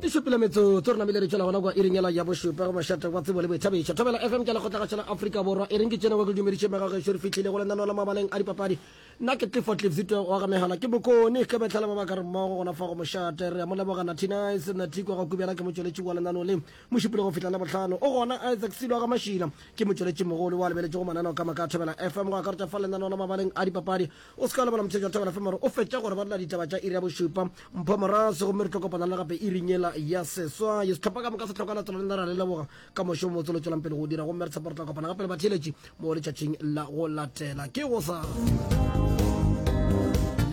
e šupile metsotso re namile re tšwela gona kwa iringela ya bošupa go mašata wa tsebo le boithabišo thobela fm ke lekgotlagašela aforika borwa e reng ke tšene wa ke dumediše megageso re fihlile go lenaneo la mabaleng a dipapadi nna ke tlefo tlefsitwe wa ga megala ke bokone ge betlhale ba ba ka re mmogo gona fa go mošate re ya mo leboga natinise natiko ga kubjana ke motšweletši wa lenaneo le mo šupile go fihla le botlhano o gona isaac silo ga mašila ke motšweletši mogolo wa lebeletšego mananeo ka moka thobela fm go akaretša fa lenaneo la mabaleng a dipapadi O se ka lebala motshedi wa thabela fm gore o fetša gore ba lela ditaba tša iri ya bošupa mpho morase gomme re tlo kopana le gape iring yela ya seswai setlhopha ka moka se tlhoka latelo lena ra le leboga ka mošomo motse lo tšwelang pele go dira gomme re tshepa re tla kopana gape le batheeletši mo letšatšing la go latela ke go sa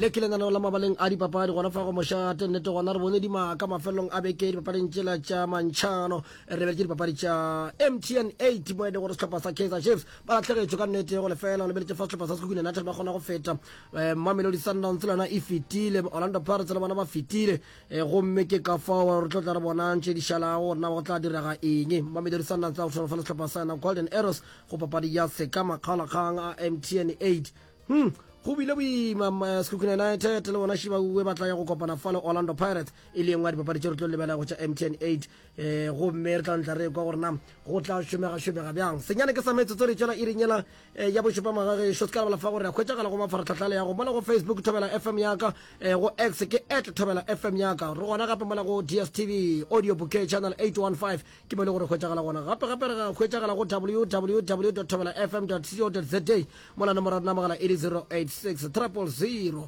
le ke lenaneo la mabaleng a dipapadi gona fa go mošate nnete gona re bone dimaka mafelelong a beke dipapading tšela tša mantšhano re lebeletse dipapadi tša mtn 8 mo e le gore sehlopha sa kaizer chiefs ba lahlegetšwe ka nnete go lefela o lebeletše fa sehlopha sa sekhukhu united ba kgona go feta eh, mamelodi sundowns le yona e fetile orlando pirates le bona ba fetile eh, gomme ke ka fao re tlo tla re bonang tše di šalago gore na go tla direga eng mamelodi sundowns a go tshwana fa le sehlopha sa yona golden arrows go papadi ya seka makgalakgang a mtn 8 hmm go bile boima eh, sekhukhu united le bona shibaue ba tla ya go kopana fa le orlando pirates e le engwe ya dipapadi tše re tlo lebelego tša mtn 8 um gomme re tla ntla re kwa gore na go tla šomegašomega bjang senyane ke sa metsotso re tšwela iring yela um ya bošupa magagešo se ka lebala fa gore a hwetšagala go mafaratlhatlhale ya go mola go facebook thobela fm yaka um go x ke at thobela fm yaka re gona gape mola go dstv audio bouquet channel 815 ke mo le gore hwetšagala gona gape gape re hwetšagala go www thobela fm co za mola nomoro ya dinamagala e le 086 triple 0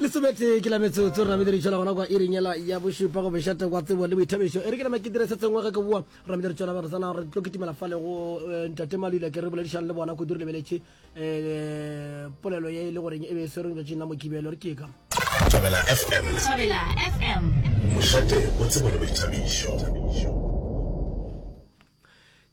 Lesometee ke la metsotso re namedire tšola gona kwa irinyela ya bošupa go bešate kwa tsebo le boithabišo e re ke nama ke dire se sengwe ge ke boa re namedire tšola re tsena re tlo kitimela fale go eh, ntate malwile ke re boledišang le bona kudu re lebeletše eh, polelo ye e le goreng e be e swereng letšatšing la mokibelo re keka Thabela FM. Thabela FM. Mošate o tsebo le boithabišo.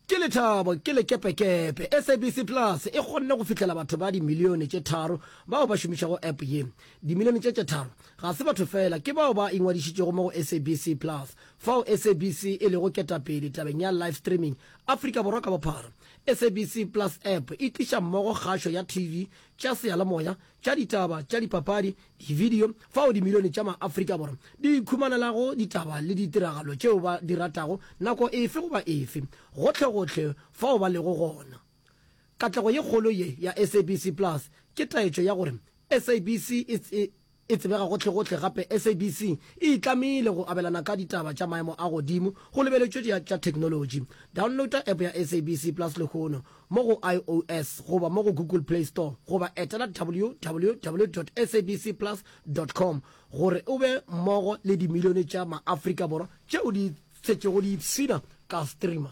Ke lethabo, ke lekepekepe. SABC Plus e kgonne go fihlela batho ba dimilione tše tharo bao ba šomišago app ye. Dimilione tše tše tharo ga se batho feela, ke bao ba ingwadišitšego mo go SABC Plus, fao SABC e lego ketapele tabeng ya live streaming Afrika Borwa ka bophara. SABC Plus App e tliša mmogo kgašo ya TV, tša seyalemoya, tša ditaba, tša dipapadi, Dividio fao dimilione tša ma-Afrika Borwa di ikhumanelago ditaba le ditiragalo tšeo ba di ratago nako efe goba efe, gohlegohle fao ba lego gona. Katlego ye kgolo ye ya SABC Plus ke taetšo ya gore SABC e tsebega gohlegohle gape SABC e itlamile go abelana ka ditaba tša maemo a godimo go lebeletšwe tša theknolotši. Downloada App ya SABC Plus lehono. mo go IOS goba mo go Google Play Store goba etela www dot sabc plus dot com gore o be mmogo le dimilione tša Maafrika Borwa tšeo di šetšego di ipshina ka streamer.